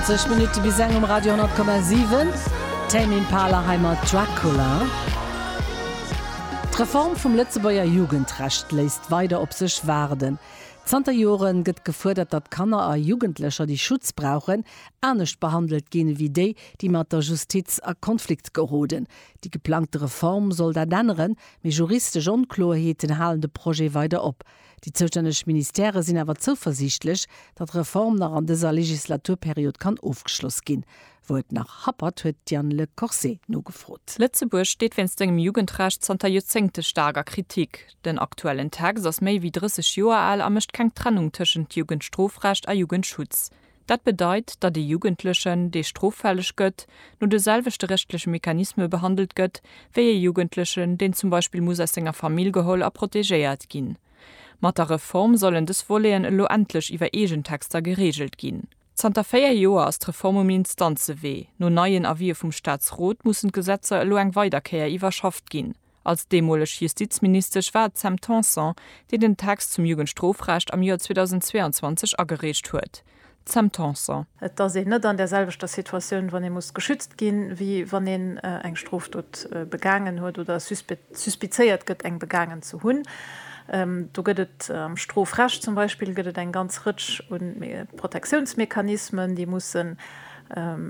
20 Minutte bis eng um Radio 10,7. Tame Impala hei mat Dracula. D'Reform vum Lëtzebuerger Jugendrecht léisst weider op sech waarden. Zanter Jore gëtt gefuerdert, datt Kanner a Jugendlecher, déi Schutz brauchen, anescht behandelt ginn, ewéi déi, déi mat der Justiz a Konflikt geroden. Déi geplangte Reform soll dat änneren, mee juristesch Onkloerheeten halen de Projet weider op. Déi zoustänneg Ministèrë sinn awer zouversiichtlech, datt d'Reform nach an dëser Legislaturperiod kann ofgeschloss ginn. Wou et nach happert, huet d'Diane Le Corset nogefrot. Lëtzebuerg steet wéinst sengem Jugendrecht zanter Joerzéngte staark a Kritik. Den aktuellen Text ass méi wéi 30 Joer al a mécht keng Trennung tëschent Jugendstrofrecht a Jugendschutz. Dat bedeit, datt ee Jugendlechen, dee stroffälleg gëtt, no de selwechte rechtleche Mechanisme behandelt gëtt, wéi ee Jugendlechen, deen zum Beispill muss aus senger Famill geholl a protegéiert ginn. Mat der Reform sollen dës Voleten elo endlech iwwer eegen Texter gereegelt ginn. Zanter véier Joer ass d'Reform um Instanzewee. No neien Avisë vum Staatsrot mussen d'Gesetzer elo eng weider Kéier iwwerschafft ginn. Als deemoleg Justizministesch war et d'Sam Tanson, déi den Text zum Jugendstrofrecht am Joer 2022 agereecht huet. D'Sam Tanson. Et ass een net an där selwechter Situatioun, wann ee muss geschützt ginn, wéi wann een eng Strofdot begaangen huet oder suspizéiert gëtt, eng begaangen ze hunn. Do gëtt et am Strofrecht zum Beispill gëtt et eng ganz Rëtsch u Protektiounsmechanismen, déi mussen,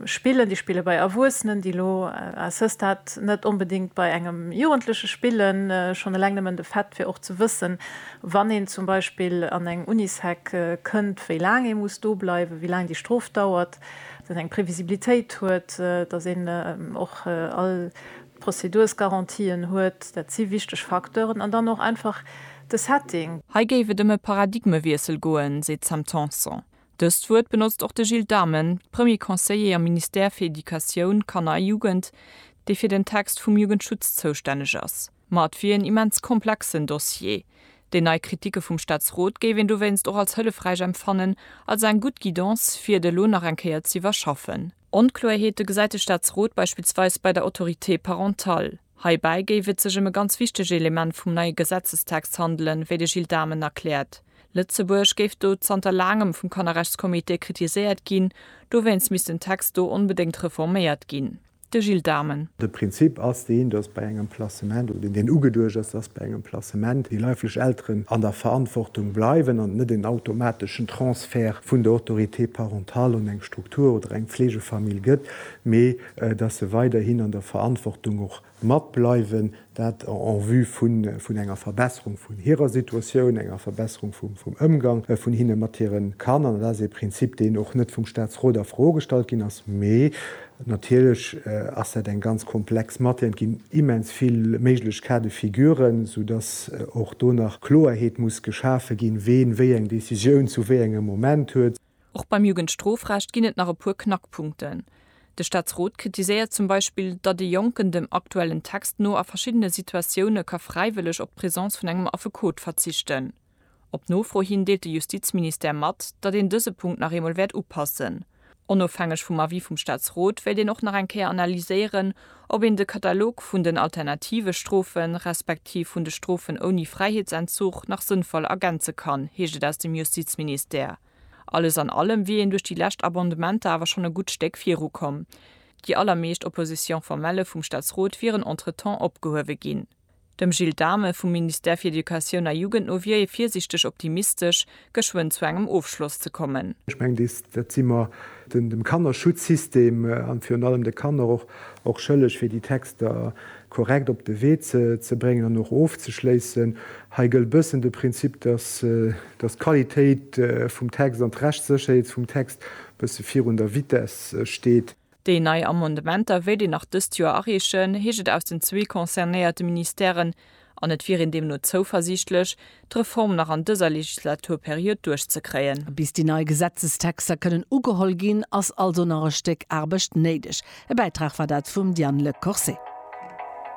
Spillen, déi spille bei Erwuessenen, déi elo à ce stade net onbedéngt bei engem Jugendleche spillen. Schonn eleng nëmmen de Fait, fir och ze wëssen, wann een zum Beispill an eng Unisec kënnt, wéi laang ee muss do bleiwen, wéi laang déi Strof dauert, dass een eng Previsibilitéit huet, dass een och all d'Prozedursgarantien huet, dat si wichteg Facteuren. An dann och einfach de Setting. Hei géif et ëm e Paradigmewiessel goen, seet d'Sam Tanson. Dëst Wuert benotzt och de Gilles Dhamen, Premier Conseiller am Ministère fir Educatioun, Kanner a Jugend, dee fir den Text vum Jugendschutz zoustänneg ass. Ma et wier en immens komplexen Dossier. Déi nei Kritike vum Staatsrot géif een dowéinst och als hëllefräich empfannen, als eng gutt Guidance, fir et elo nach eng Kéier z'iwwerschaffen. Onkloerheete gesäit de Staatsrot beispillsweis bei der Autorité parentale. Heibäi géif et sech ëm e ganz wichtege Element vum neie Gesetzestext handelen, wéi de Gilles Dhamen erkläert. Lëtzebuerg géif do zanter laangem vum Kannerrechtscomité kritiséiert ginn, dowéinst misst den Text do onbedéngt reforméiert ginn. De Gilles Dhamen. De Prinzip ass deen, datt bei engem Placement, oder deen ugeduecht ass, datt bei engem Placement déi leiflech Elteren an der Verantwortung bleiwen an et net en automateschen Transfert vun der Autorité parentale un eng Struktur oder eng Pflegefamill gëtt, mee, dass se weiderhin an der Verantwortung och matbleiwen, dat en vue vun enger Verbesserung vun hirer Situatioun, enger Verbesserung vum Ëmgang vun hinne mat hire Kanner. Dat ass ee Prinzip, deen och net vum Statsrot a Fro gestallt ginn ass, mee natierlech ass dat eng ganz komplex Matière. Et ginn immens vill méiglech Cas de figuren, soudass och do nach Kloerheet muss geschafe ginn, ween wéi eng Décisioun zu wéi engem Moment huet. Och beim Jugendstrofrecht ginn et nach e puer Knackpunkten. De Staatsrot kritiséiert zum Beispill, datt ee Jonken dem aktuellen Text no a verschiddene Situatioune ka fräiwëlleg op d'Presence vun engem Affekot verzichten. Op Nofro hin deelt de Justizministère mat, datt een dëse Punkt nach eemol wäert upassen. Onofhängeg vum Avis vum Staatsrot wéilt een och nach eng Kéier analyséieren, Ob een de Katalog vun den alternative Strofe respektiv vun de Strofen ouni Fräiheetsentzug nach sënnvoll ergänze kann, heescht et aus dem Justizministère. Alles an allem wier een duerch déi lescht Abondementer awer schonn e gutt Stéck viru komm. Déi allermeescht Opposition formelle vum Staatsrot wieren entretemps opgehuewe ginn. Dem Gilles Dhame vum Ministère fir Educatioun a Jugend no wier ee virsiichteg optimistesch, geschwënn zu engem Ofschloss ze kommen. Ech mengen, dat si mer dem Kannerschutzsystem an virun allem de Kanner och schëlleg, fir déi Texter korrekt op de Wee ze bréngen an och ofzeschléissen. Hei gëllt e bëssen de Prinzip, dass d'Qualitéit vum Text an d'Rechtssécherheet vum Text e bësse virun der Vitess steet. Déi nei Amendementer wéilt een nach dëst Joer areechen, heescht et aus den zwee concernéierte Ministèren. An et wier een deemno zouversiichtlech, d'Reform nach an dëser Legislaturperiod duerchzekréien. Bis déi nei Gesetzestexter kënnen ugeholl ginn, ass also nach e Stéck Aarbecht néideg. E Bäitrag war dat vum Diane Le Corset.